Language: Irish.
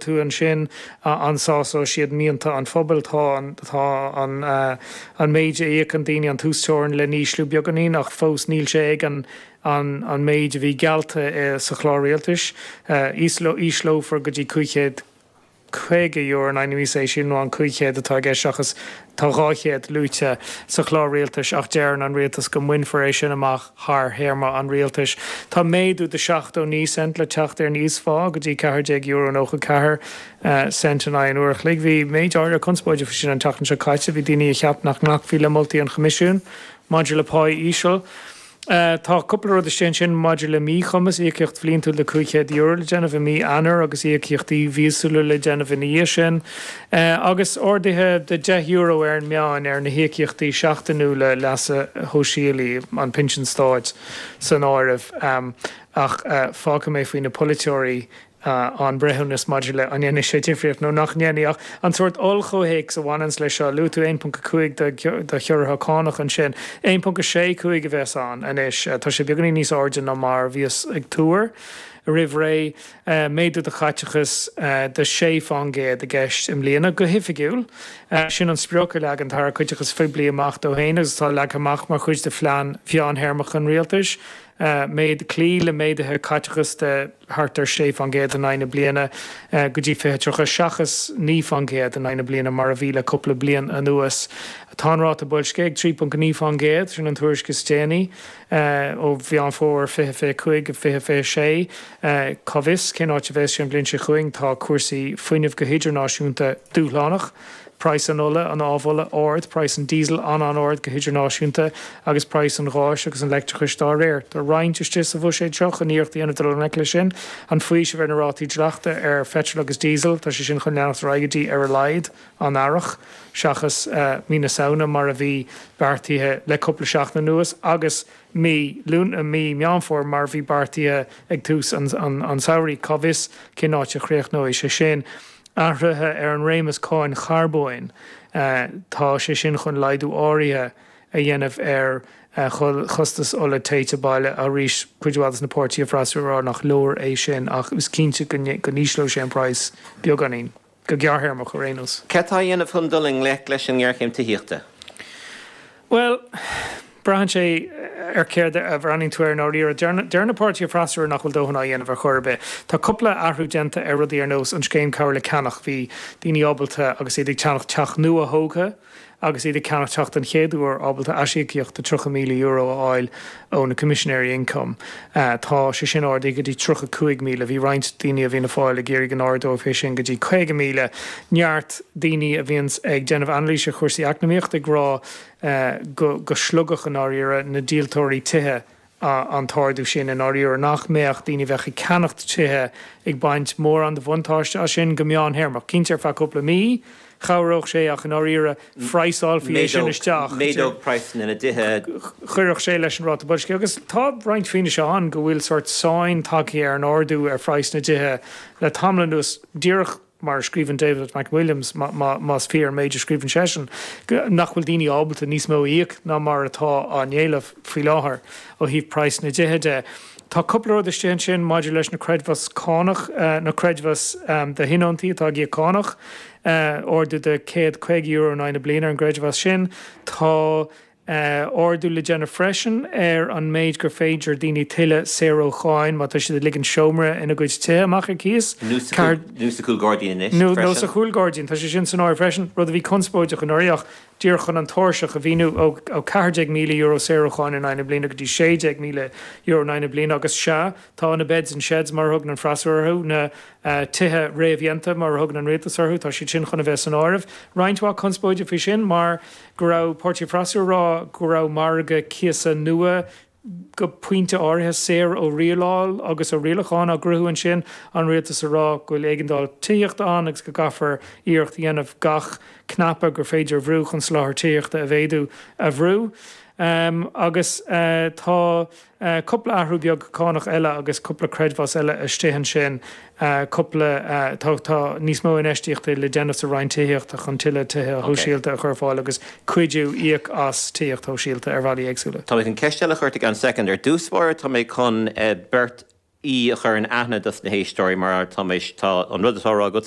tú ansin an sásóidh siad mianta an phobail? Tá an, tá an, an méid a íocfaidh daoine an t-uasteorainn le n-ísliú beagáinín ach fós níl sé ag an, an, an méid a bhí geallta i, sa chlár rialtais. Ísleoidh, ísleofar go dtí cúig chéad caoga euro in aghaidh na míosa é sin, nó an cúig chéad atá i gceist seachas Tá 200 luaite sa Chlár Rialtais ach deireann an Rialtas go mbainfear é sin amach thar théarma an Rialtais. Tá méadú de 79 cent le teacht ar an íosphá go dtí €14.94 in aghaidh an uair a chloig. Bhí méid áirithe conspóide faoi sin an tseachtain seo caite. Bhí daoine a cheap nach nglacfaí le moltaí an Choimisiúin maidir le pá íseal. Tá cúpla rud istigh ansin maidir le míchumas, íocaíocht bhliantúil de €500 le déanamh i mí Eanáir agus íocaíochtaí míosúla le déanamh ina dhiaidh sin, agus arduithe de €10 ar an meán ar na híocaíochtaí seachtainiúla leasa shóisialaigh, an Pinsean Stáit san áireamh. Ach fágfaidh mé faoi na polaiteoirí a an breithiúnas maidir le an ndéanfaidh sé difríocht nó nach ndéanfaidh ach an sórt oll-chomhthéacs a bhaineanns leis seo. Luaigh tú 1.5 de chiorruithe cánach ansin. 1.65 a bheas ann anois. Tá sé beagáinín níos airde ná mar a bhíos ag tuar roimh ré. Méadú do chaiteachas de sé fán gcéad i gceist i mbliana. Go hoifigiúil, sin an sprioc a leag an tAire Caiteachais Phoiblí amach dó féin agus atá leagtha amach mar chuid de phlean mheántéarmach an Rialtais. a mhéid, cloí le méaduithe caiteachas de thart ar 6 fán gcéad in aghaidh na bliana go dtí 2030 seachas 9 fán gcéad in aghaidh na bliana mar a bhí le cúpla bliain anuas. Tá an ráta boilscithe ag 3.9 fán gcéad, sin an tuairisc is déanaí ó Mheán Fómhair 2025 2026. Cá bhfios cén áit a bheas sé an bhliain seo chugainn, tá cúrsaí fuinnimh go hidirnáisiúnta dúshlánach. Praghas an ola, an amhola, ard, praghas an diesel an-an-ard go hidirnáisiúnta agus praghas an gháis agus an leictreachais dá réir. Tá roinnt istigh sa bhuiséad seo chun iarracht a dhéanamh dul i ngleic leis sin. An faoiseamh ar na rátaí dleachta ar pheitreal agus diesel, tá sé sin chun leanacht ar aghaidh go dtí, ar a laghad, an Earrach seachas mí na Samhna mar a bhí beartaithe le cúpla seachtain anuas agus mí Lún, mí Meán Fómhair mar bhí beartaithe ag tús an tsamhraidh. Cá bhfios cén áit a chríochnóidh sé sin. Athruithe ar an réimeas cáin charbóin, tá sé sin chun laghdú áirithe a dhéanamh ar chostas ola téite baile. Arís cuid mhaith de na páirtithe freasúra a rá nach leor é sin ach is cinnte go n-ísleoidh sé an price beagáinín. go gearrthéarmach ar aon nós. Cad tá á dhéanamh chun dul i ngleic leis an ngéarchéim tithíochta? Bhuel, braitheann sé ar chéard a bhreathnaíonn tú air i ndáiríre. Deir na páirtithe freasúra nach bhfuil dóthain á dhéanamh ar chor ar bith. Tá cúpla athrú déanta ar rudaí ar nós an scéim cabhair le ceannach, bhí daoine ábalta agus iad ag ceannach teach nua-thógtha, agus iad ag ceannach teach den chéad uair, ábalta aisíocaíocht de €30,000 a fháil ó na Coimisinéirí Ioncaim. Tá sé sin ardaithe go dtí €35,000. Bhí roinnt daoine a bhíonn ag fáil ag iarraidh go n-ardófaí é sin go dtí €50,000. Neart daoine a bhíonns ag déanamh anailís ar chúrsaí eacnamaíochta ag rá go slogfadh, i ndáiríre, na díoltóirí tithe an t-ardú sin i ndáiríre, nach mbeadh daoine a bheadh ag ceannacht tithe ag baint mórán de bhuntáiste as sin go meán-théarmach. Cinnte ar feadh cúpla mí, chabhródh sé ach i ndáiríre, phraghsálfaí é sin isteach. Méadódh praghsanna na dtithe. Chuirfeadh sé leis an ráta boilscithe. Agus tá roinnt fianaise ann go bhfuil sórt sáinn tagtha ar an ardú ar phraghas na dtithe le tamall anuas. Díreach mar a scríobhann David McWilliams, más fíor an méid a scríobhann seisean, nach bhfuil daoine ábalta níos mó a íoc ná mar atá á éileamh faoi láthair ó thaobh praghas na dtithe de. Tá cúpla rud istigh ansin maidir leis na creidmheas cánach, na creidmheas do thionóntaí atá ag íoc cánach, ardú de €150 in aghaidh na bliana ar an gcreidmheas sin. Tá. a ardú le déanamh freisin ar an méid gur féidir daoine tuilleadh saor ó cháin má tá siad ag ligean seomra ina gcuid tithe amach ar cíos. Nó sa chúl gairdín anois freisin. Nó sa chúl gairdín, tá sé sin san áireamh freisin, rud a bhí conspóideach anuraidh ach díreach chun an tairseach a mhíniú, ó €14,000 saor ó cháin in aghaidh na bliana go dtí €16,000 in aghaidh na bliana agus, sea, tá na beds in sheds mar a thugann an freasúra orthu, na tithe réamhdhéanta mar a thugann an rialtas orthu, tá siad sin chun a bheith san áireamh. Roinnt mhaith conspóide faoi sin mar. go raibh páirtithe freasúra a rá go raibh margadh cíosa nua, go pointe áirithe, saor ó rialáil agus ó rialacháin á chruthú ansin, an rialtas a rá go bhfuil éigeandáil tithíochta ann agus go gcaithfear iarracht a dhéanamh gach cnaipe gur féidir a bhrú chun soláthar tithíochta a mhéadú a bhrú. Agus tá. Cupla athrú beag cánach eile agus cupla creidmheas eile istigh ansin, cupla, tá, tá níos mó infheistíochta le déanamh sa Roinn Tithíochta chun tuilleadh tithe shóisialta a chur ar fáil agus cuidiú, íoc as tithíocht shóisialta ar bhealaí éagsúla. Tá mé chun ceist eile a chur, fan second ar dtús báire, tá mé chun beirt aoi a chur in aithne dos na héisteoirí mar tá mé, tá an rud atá a rá agat,